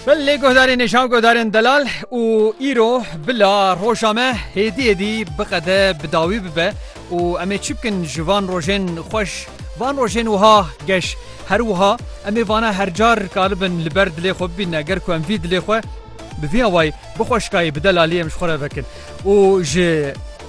Bil lê guhdarên nêşan guhdarên delal û îro bila roja me hêdî hêdî biqede bi dawî bibe û em ê çi bikin ji van rojên xweş van rojên wiha geş her wiha em ê vana her car dikaribin li ber dilê xwe bibîne ger ku em vî dilê xwe bi vî awayî bi xweşikayî bi delalî em ji xwe re vekin û ji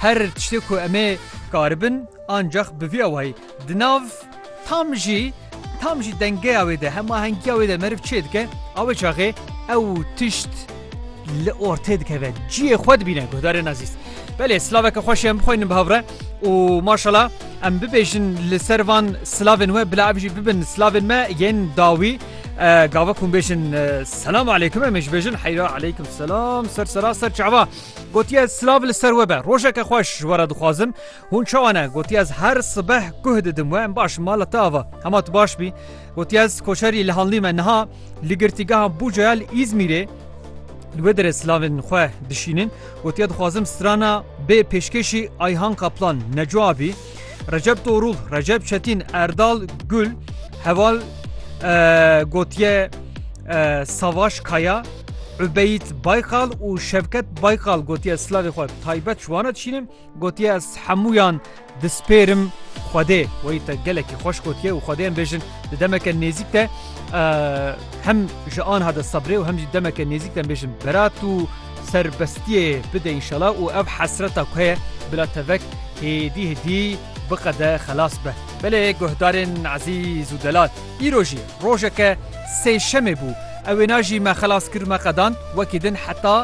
Her tiştê ku em ê karibin ancax bi vî awayî di nav tam jî tam jî dengeya wê de hemahengiya wê de meriv çê dike awê çaxê ew tişt li ortê dikeve ciyê xwe dibîne guhdarê nazîst. Belê silaveke xweş em bixwînin bi hevre û maşala em bibêjin li ser van silavên we bila ev jî bibin silavên me yên dawî gava ku bêjin selam aleykum em ê ji bêjin heyra aleykum selam ser sera ser çava. Gotiye silav li ser we be. Rojeke xweş ji we re dixwazim. Hûn çawa ne? Gotiye ez her sibeh guh didim we. Em baş mala te ava. Hema tu baş bî. Gotiye ez koçerî li hanlî me niha li girtîgeha Bucaya li Îzmîrê li wê derê silavên xwe dişînin. Gotiye dixwazim strana bê pêşkêşî Ayhan Kaplan Neco abî. Recep Torul, Recep Çetin, Erdal Gül, Heval Gotiye Savaş Kaya, Übeyit Baykal û Şevket Baykal gotiye slavê xwe taybet ji wana dişînim gotiye ez hemûyan dispêrim xwedê weyî te gelekî xweş gotiye û xwedêyan bêjin di demeke nêzîk te hem ji an hade sebrê û hem jî demeke nêzîk te bêjin berat û serbestiyê bide înşala û ev hesreta ku heye bila tevek hêdî hêdî biqede xelas be. Belê guhdarên Ezîz û Delal îro jî rojeke sêşemê bû ew wêna jî me xelas kir me qedand wekî din heta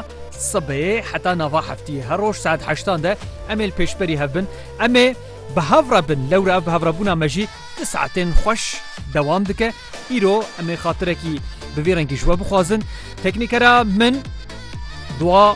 sibê heta nava heftiyê her roj saet heştan de em ê li pêşberî hev bin em ê bi hev re bin lewra ev bi hev re bûna me jî du saetên xweş dewam dike. Îro em ê xatirekî bi vî rengî ji we bixwazin. Teknîkera min dua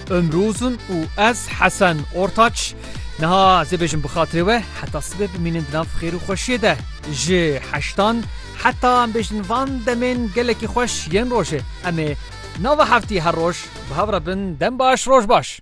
Ömrü Uzun û ez Hesen Ortaç. Niha zê bêjin bi xatirê we heta sibê bimînin di nav xêr û xweşiyê de. Ji heştan heta em bêjin van demên gelekî xweş yên rojê. Em ê nava heftî her roj bi hev re bin. Dem baş, roj baş.